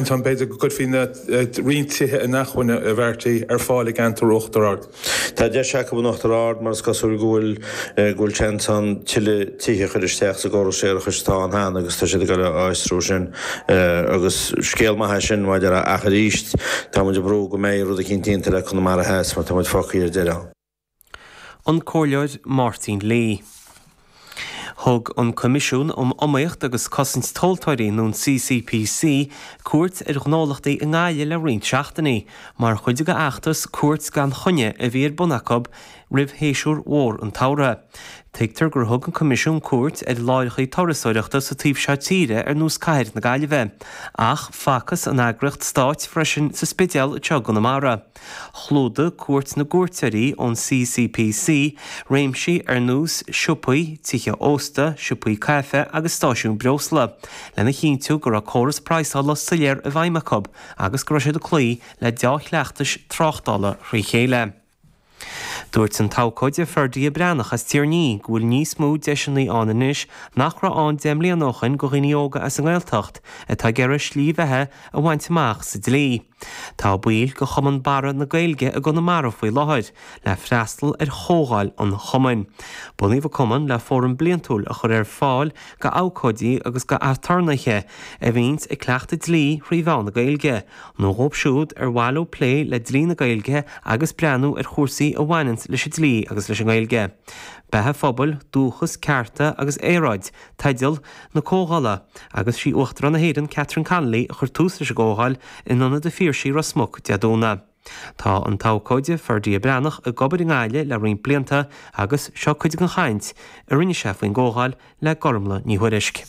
ansin, b'fhéidir go gcuirfí roinnt tithe inacmhainne a bheartaí ar fáil i gceantar Uachtar Ard. Tá deis acu in Uachtar Ard mar is cosúil go bhfuil go bhfuil seans ann tuilleadh tithe a chur isteach sa gcóras séarachais atá ann cheana agus tá siad ag dul a fhiosrú sin agus scéal maith é sin maidir ach arís tá muid ag brú go mbeidh rud eicínt déanta le Conamara Theas mar tá muid fágthaí ar deireadh. an Comhairleoir Máirtín Lee. Thug an Coimisiún um Iomaíocht agus Cosaint Tomhaltóirí, nó an CCPC, cuairt ar ghnólachtaí i nGaillimh le roinnt seachtainí mar chuid de fheachtas 'Cuairt gan Choinne' a bhí ar bun acu roimh shéasúr mhór an tsamhraidh. Tuigtear gur thug an Coimisiún cuairt ar láithreacha turasóireachta sa taobh seo tíre ar nós cathair na Gaillimhe ach facthas an eagraíocht stáit freisin sa Spidéal i dtreo Chonamara. Chlúdaigh cuairt na gcuairteoirí ón CCPC réimsí ar nós siopaí, tithe ósta, siopaí caife agus stáisiúin breosla, lena chinntiú go raibh córas praghsála soiléir i bhfeidhm acu agus go raibh siad ag cloí le deá-chleachtais tráchtála thrí chéile. Dúirt an t-abhcóide Ferdia Breathnach as Tír an Fhia go bhfuil níos mó deiseanna ann anois nach raibh ann deich mbliana ó shin do dhaoine óga as an nGaeltacht atá ag iarraidh slí bheatha a bhaint amach sa dlí. Tá baill de Chumann Barra na Gaeilge i gConamara faoi láthair le freastal ar chomhdháil an Chumainn. Bunaíodh an Cumann le fóram bliantúil a chur ar fáil go abhcóidí agus go aturnaethe a bhíonns ag cleachtadh dlí thrí mheán na Gaeilge, nó dhóibh siúd ar mhaith leo plé le dlí na Gaeilge agus breathnú ar chúrsaí a bhaineanns leis an dlí agus leis an nGaeilge. Beatha phobail, dúchas, cearta agus aeráid, teideal na comhdhála, agus 'sí Uachtarán na hÉireann, Catherine Connolly, a chuir tús leis an gcomhdháil, in Ionad an Phiarsaigh, Ros Muc, Dé Domhnaigh. Tá an t-abhcóide, Ferdia Breathnach, ag obair i nGaillimh le roinnt blianta agus seo cuid den chaint a rinne sé faoin gcomhdháil le Gormlaith Ní Thuairisg.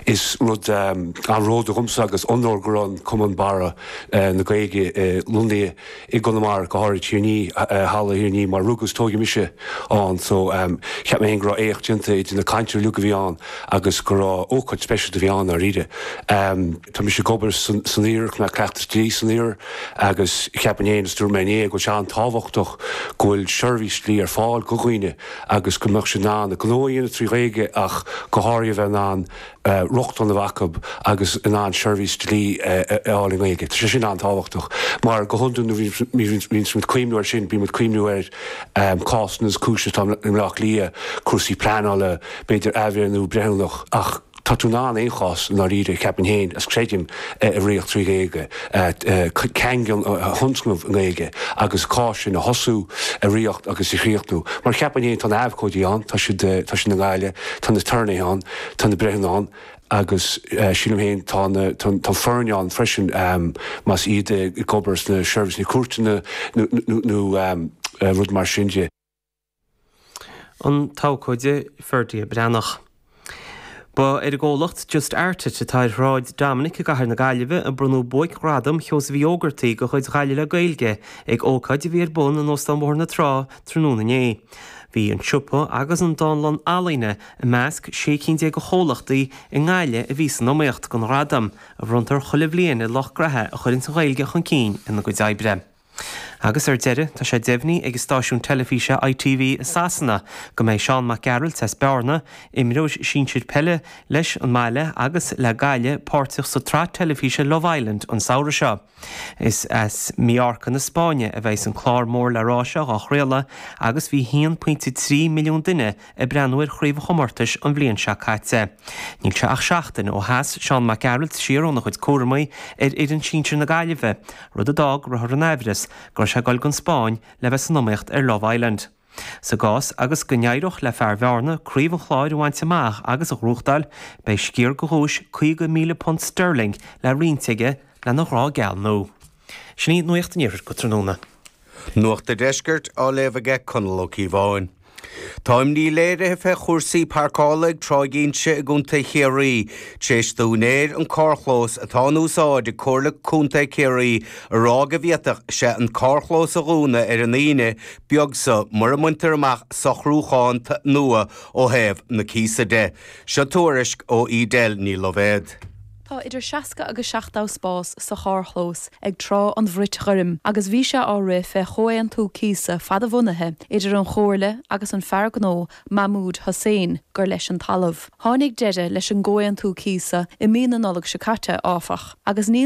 Is rud an-bhródúil dhomsa agus onóir go raibh an Cumann Barra na Gaeilge lonnaithe i gConamara, go háirid Tír an Fhia, halla Thír an Fhia mar rugadh is tóigeadh mise ann so ehm cheap mé féin go raibh éacht déanta idir na cainteoirí uilig a bhí ann agus go raibh ócáid speisialta a bhí ann dháiríre. Ehm tá mise ag obair san san iarthar agus mé ag cleachtadh dlí san iarthar agus cheapainn féin is dúirt mé inné go bhfuil sé an-tábhachtach go bhfuil seirbhís dlí ar fáil go dhaoine agus go mbeadh siad in ann a ngnó a dhéanamh trí Ghaeilge ach go háirithe a bheith in ann rochtain a bheith acu agus in ann seirbhís dlí a fháil i nGaeilge. Tá sé sin an-tábhachtach mar, go hiondúil, nuair a bhíonns muid ag cuimhniú air sin, bíonn muid ag cuimhniú ar cásanna is cúiseanna atá i mBleá Cliath, cúrsaí pleanála, b'fhéidir athbhreithniú breithiúnach, ach tá tú in ann aon chás, i ndáiríre, cheapainn féin, is creidim, a ritheacht trí Ghaeilge, caingean a thionscnamh i nGaeilge agus cás sin a thosú, a ritheacht agus a chríochnú. Mar cheapainn féin, tá na h-abhcóidí ann, tá siad i nGaillimh, tá na h-aturnaetha ann, Tá na breithiúna ann agus sílim féin tá na, tá an foirne ann freisin, más iad ag obair sna seirbhísí cúirteanna nó rud mar sin de. An tAbhcóide Ferdia Breathnach. Ba ar an gcomhlacht Just Art It atá ar Shráid Dominic i gcathair na Gaillimhe a bronnadh Buaic-Ghradam Sheosaimh Uí Ógartaigh de chuid Ghaillimh le Gaeilge ag ócáid a bhí ar bun in Óstán Bhóthar na Trá tráthnóna inné. Bhí an siopa agus an dánlann ealaíne I measc sé cinn déag de chomhlachtaí i nGaillimh a bhí san iomaíocht don ghradam, a bhronntar chuile bhliain ar lucht graithe a chuireanns an Ghaeilge chun cinn ina gcuid oibre. Agus ar deireadh, tá sé deimhnithe ag an stáisiún teilifíse ITV i Sasana go mbeidh Seán Mac Gearailt as Bearna, imreoir sinsir peile leis an mbaile agus le Gaillimh, páirteach sa tsraith teilifíse Love Island an samhradh seo. Is as Mallorca na Spáinne a bheas an clár mór le rá seo á chraoladh agus bhí 1.3 milliún duine ag breathnú ar chraobh an chomórtais an bhliain seo caite. Níl sé ach seachtain ó sheas Seán Mac Gearailt siar óna chuid cúramaí ar fhoireann sinsir na Gaillimhe, rud a d'fhág go rabhthar in aimhreas go raibh sé ag dul don Spáinn le bheith san iomaíocht ar Love Island. Sa gcás agus go n-éireodh le fear Bhearna craobh an Chláir a bhaint amach agus a ghnóthachtáil, beidh sciar de dhuais £50,000 sterling le roinnt aige lena ghrá geal nua. Sin í nuacht an Iarthair go tráthnóna. Nuacht an Deiscirt á léamh aige Conall Ó Cíobháin. Tá imní léirithe fé chúrsaí páirceála ag Tráigh Inse i gContae Chiarraí tar éis d'úinéir an carrchlós atá in úsáid ag Comhairle Contae Ciarraí a rá go bhféadfadh sé an carrchlós a dhúnadh ar an Aoine beag so mura mbaintear amach socrúchán nua ó thaobh na cíosa de. Seo tuairisc ó Edel Ní Loibhéad. Tá idir 60 agus 70 spás sa charrchlós ag Trá an Bhrait Ghoirm agus bhí sé á rith fé chomhaontú cíosa fadbhunaithe idir an Chomhairle agus an fear gnó Mahmood Hussain gur leis an talamh. Tháinig deireadh leis an gcomhaontú cíosa i mí na Nollag seo caite, áfach, agus níl